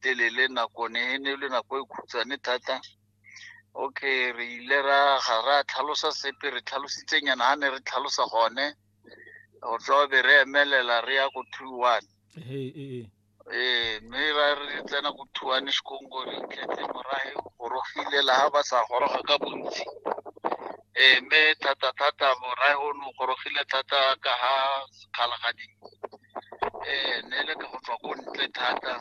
telele nako ne e ne e le nako e khutshwane thata okay re ile ra ga ra tlhalosa sepe re tlhalositse nyana ha ne re tlhalosa gone go tswa be re emelela re ya ko two one ee mme ra re tsena ko two one sekongo re itlhetse morahe gorogile la ha ba sa goroga ka bontsi ee mme thata-thata morahe o ne o gorogile thata ka ha kgalagadi um ne le ka go tswa ko ntle thata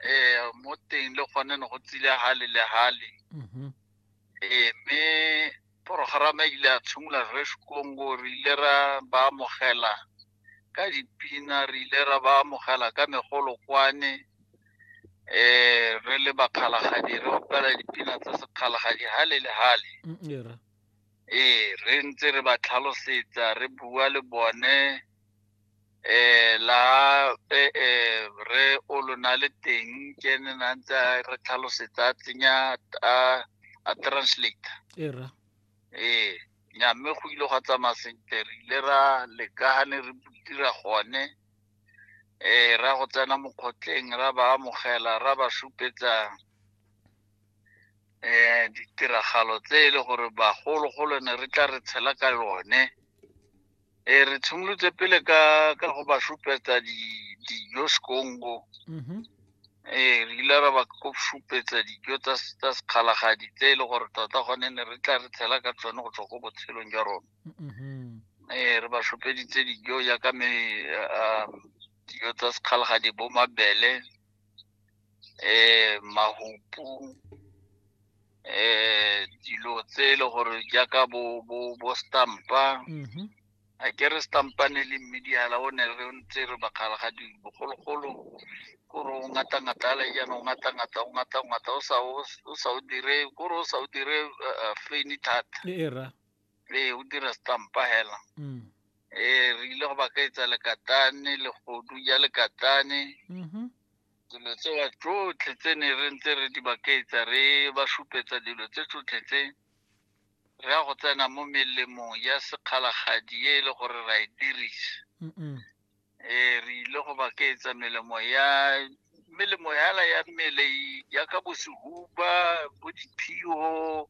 um mo teng le gone ne go tsile hale le hale mm-hmm. um mme porogerama ile a tshimolola re sekongo re ile ra ba amogela ka dipina re ile ra ba amogela ka megolokwane um re le bakgalagadi re opela dipina tsa sekgalagadi hale le hale mm, ee re ntse re ba tlhalosetsa re bua le bone eh la eh, eh re o lona le teng ke ne na ntse a re tlhalosetsa a tsenya a a translate e ra ee nya mme go ile gwa tsamaya sentle re ile ra leka ga ne re dira gone eh ra go tsena mokgotleng ra ba amogela ra ba supetsa um ditiragalo tse e le gore bagologolo ne re tla re tshela ka yone um re tshimolotse pele ka ka go ba supetsa dijo sekongo um re ile ra ba ko supetsa dijo tsa sekgalagadi tse e le gore tota gone ne re tla re tshela ka tsone go tswa ko botshelong jwa rona um re ba supeditse dijo jaaka dijo tsa sekgalagadi bo mabele eh mahupu eh dilo tse e le gore jaaka bo bo bo stampa Mhm. a ke re stampane le mmediala o ne re ntse re bakgala ga di- bogologolo kore o ngata ngata le jaana o ngata ngata o ngata ngata o sa o o sa o dire kore o sa o dire eh, eh, feni thata e e ra ee o dira stampa hela mm. ee re ile go ba ka etsa lekatane legodu ja lekatane mm-hmm. dilo tsewa tsotlhe tse ne re ntse re di bakaetsa re ba supetsa dilo tse tsotlhe tse re ya go tsena mo melemong ya sekgalagadi e e le gore ra e dirisa eh re ile go ba keetsa melemo ya melemo yala ya mmele e- ya ka bosehuba bo diphio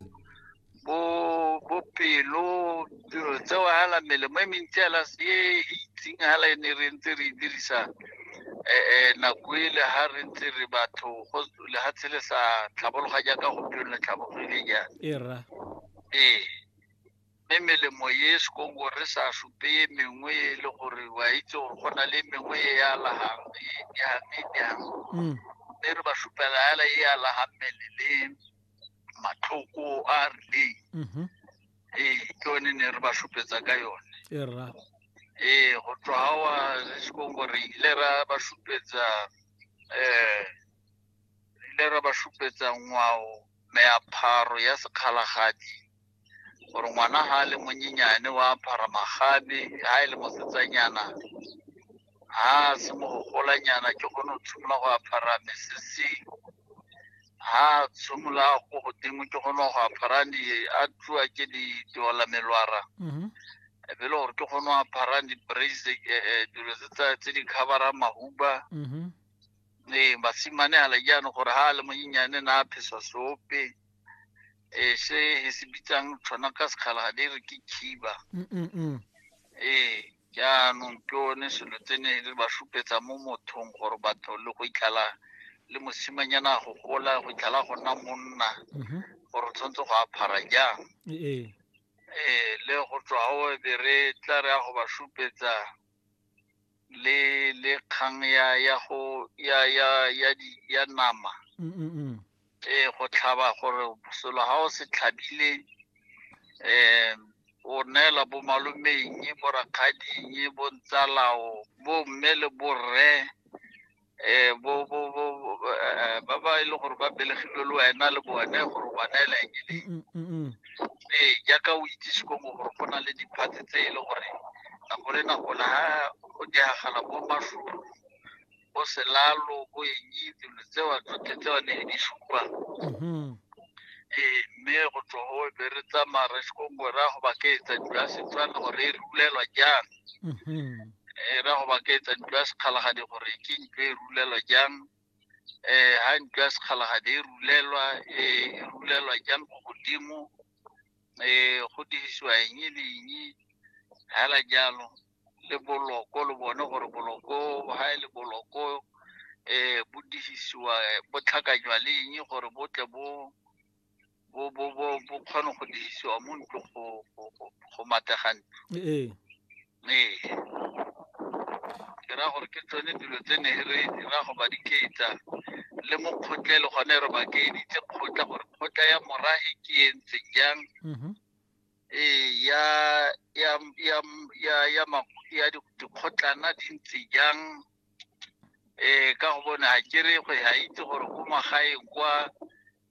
bo bo pelo dilo tseo hala melemo e mentsi yala e e itseng hala e ne re ntse re e dirisa eh, eh, nako e le ha re ntse re batho go lehatshe le sa tlhabologa jaaka gompieno le tlhabologile jaana e rra ee mme melemo e sekongo re sa supe e mengwe e le gore wa itse gore go na le mengwe e e alagang e jang e jang Mm. mme re ba supela fela e alaga mmele le matlhoko a a rileng Mhm. ee ke one ne re ba supetsa ka yone E rra. ee go tswa ga wa sekongo re ile ra ba supetsa um re ile ra ba supetsa ngwao meapharo ya sekgalagadi gore ngwana ha le monyenyane wa pharamagabe ha e le mosetsanyana ha se mogolanyana ke gone o tshimolola go apara mesese ha tshimolola ko godimo ke gone go apara di a tluwa ke di diola melwara mhm. e be le gore ke gone go apara di-brace e, e, dilo tse di coverang mahuba mhm. ee basimane ala jaanong gore ha a le monyenyane na a phesa sope eh, se he se bitsang tshwana ka sekgala ga di re ke khiba mm, mm, mm. ee jaanong ke one selo tse ne re ba supetsa mo mothong gore batho le go itlhala le mosimanyana go gola go itlhala go nna monna mm-hmm. gore o tshwanetse go aphara jang ee, ee. ee le go tswa o be re tla re ya go ba supetsa le le kgang ya ya go ya ya ya di ya nama Mm, mm, mm. eh go tlhaba gore selo ha o se tlhabile eh o neela bo malomeng bo rakgading bo ntsalao bo mme le borre eh, bo bo bo bo- eh, ba ba e leng gore ba belegilwe le wena le bone gore o ba neela eng e leng Mm, mm, mm. ee jaaka o itsise ko mo gore go na le diphatse tse e le gore nako le nako la ha o diagala bo matlholo bo selalo bo eng dilo tseo tsotlhe tseo ne di supa Mhm. ee mme go tswa go be re tsamaya re se kongwe ra go ba ke etsa dilo ya setswana gore e rulelwa jang e ra go ba ke etsa ntlo ya sekgalagadi gore ke ntlo e rulelwa jang um ha ntlo ya sekgalagadi e rulelwa e rulelwa jang ko godimo um go dirisiwa eng le eng hela jalo le boloko le bone gore boloko ha e le boloko um bo dirisiwa bo tlhakanywa le eng gore bo tle bo bo bo bo bo kgone go dirisiwa mo ntlo go go go matega ntlo ee ee ke ra gore ke tsone dilo tse ne re dira go ba diketsa le mo kgotlele gone re ba keeditse kgotla gore kgotla ya morahe ke e ntse jang mhm. ee ya ya ya ya ya ya dikgotlana di ntse jang ee ka go bone ga ke re go ga itse gore ko magaeng kwa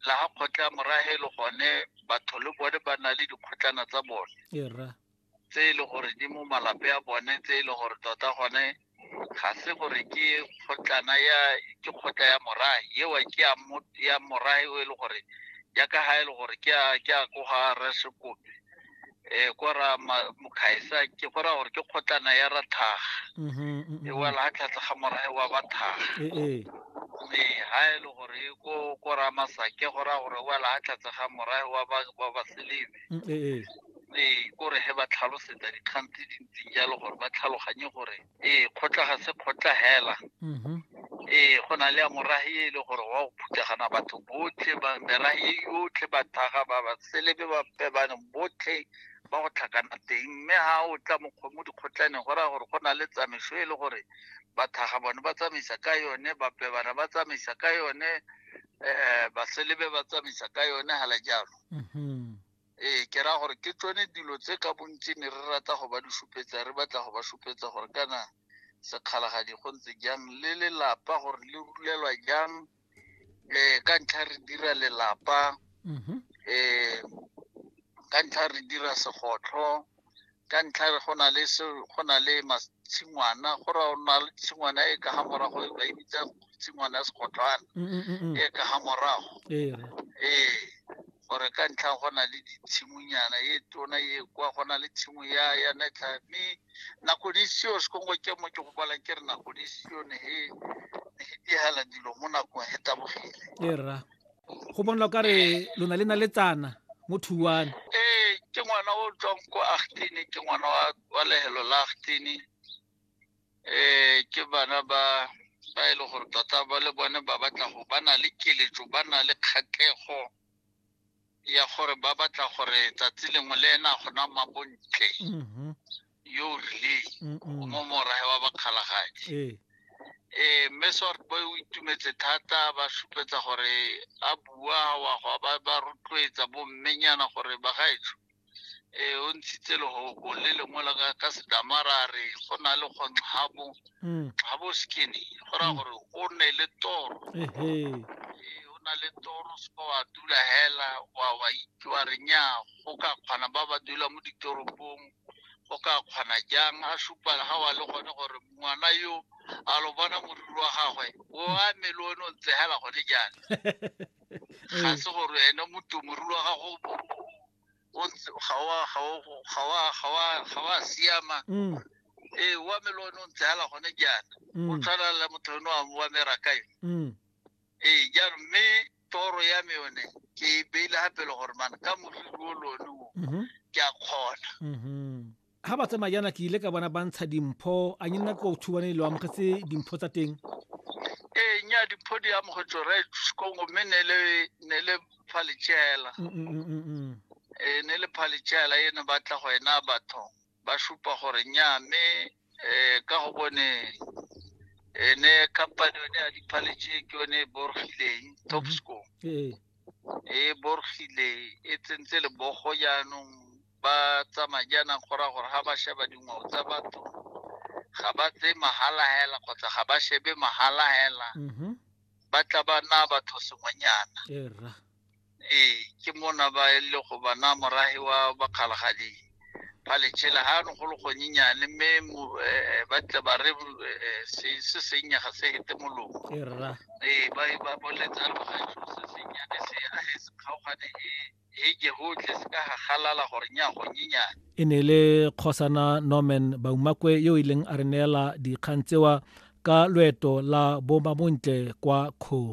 la ga kgotla morahe le gone batho le bone ba na le dikgotlana tsa bone tse e le gore di mo malape a bone tse e le gore tota gone ga se gore ke kgotlana ya ke kgotla ya morahe ewa ke ya morahe o e le gore ya ka ga e le gore ke a ko ga resekope eh ko ra ma- mokhaisa ke go raya gore ke kgotlana ya ra thaga e wela ha tlhatlha ga morae wa ba thaga ee mme ha e le gore e ko ko ra masake go raya gore e wela ha tlhatlha ga morae wa ba wa ba selebe ee mme ko re he ba tlhalosetsa dikgang tse dintseng jalo gore ba tlhaloganye gore ee kgotla ga se kgotla hela mhm. ee go na le ya morahi e le gore wa go phuthagana batho botlhe merahi e yotlhe bathaga ba ba selebe ba pebane botlhe ba go tlhakana teng mme ga o tla mo dikgotlaneng go raya gore go na le tsamaiso e le gore bathaga bone ba tsamaisa ka yone bapebana ba tsamaisa ka yone um baselebe ba tsamaisa ka yone hala jalo mhm. ee ke raya gore ke tsone dilo tse ka bontsi ne re rata go ba di supetsa re batla go ba supetsa gore kana sekgalagadi go ntse jang le lelapa gore le rulelwa jang um ka ntlha re dira lelapa um ka ntlha re dira segotlho ka ntlha re go na le se go na le tshingwana go ra o na le tshingwana e ka ga morago e ba e bitsa tshingwana ya segotlwana mm, mm, mm, e ka ga morago ee gore ka ntlha go na le ditshimonyana e tona e kwa go na le tshimo ya ya netlha mme nako di seo sekongo ke mo ke go bala ke re nako di seo ne e ne e dilo mo nakong e tabogile go bonla o ka re lona le na le tsana mo thuwane ee ke ngwana o tswang ko agtene ke ngwana wa lehelo la agtene um ke bana ba ba e le gore tota ba le bone ba batla go ba na le keletso ba na le kgatlego ya gore ba batla gore tsatsi lengwe le ena gona mabontle mm-hmm. yo o rileng o mo morae wa bakgalagadi ee ee mme sort boy o itumetse thata ba supetsa gore a bua wa go ba ba rotloetsa bo mmenyana gore ba gaetsho ee o ntshitse legogo le lengwe la ka ka sedamara re go na le go nxabo nxabo mm. skinny go raya mm. gore o ne le toro o na le toro seka wa dula hela wa wa itse wa re nya go ka kgona ba ba dula mo ditoropong o ka kgona jang a supa ga wa le gone gore ngwana yo a lo bona moriri wa gagwe o a mele o ne o ntsegela gone jang ga se gore ene motho moriri wa gago ga wa siama mm. ee wa mele o ne o ntsegela gone jana o mm. tshwana le motho o ne wa merakayo mm. ee jaanong mme toro ya me yone ke e beile ga pele gore mana ka moriri o lone o mhm. ke a kgona ga mhm. ba tsamaya jaana ke ile ka bona ba ntsha dimpho a nye nna ko thubane le amogetse dimpho tsa teng ee nya dimpho di amogetse re kongo mme ne le phaletsela mm, mm, mm, ee ne le phaletsela e ne batla go ena batho ba supa gore nnyaa mme um ka go bone ene company yone ya diphaletse ke yone e borogileng mhm. topsco ee. e borogile e tsentse lebogo jaanong ba tsamaya jaanang go raya gore ga ba sheba dingwao tsa batho ga ba tse mahala hela kgotsa ga ba shebe mahala hela mhm. ba tla ba na batho sengwenyana ee ke mona ba e le go bana morahi wa bakgalagadi ba letšhela ga no go le gonyenyane mme mo- eh, ba tle ba re eh, se se sennye ga se hete molomo ke rra ee ba e ba boletsa re ga selo se sennyane se a he se kgaogane he he ke gotlhe se ka gagalala gore nya gonyenyane e ne e le kgosana norman baumakwe yo e leng a re neela dikgang tsewa ka loeto la bomabontle kwa kgo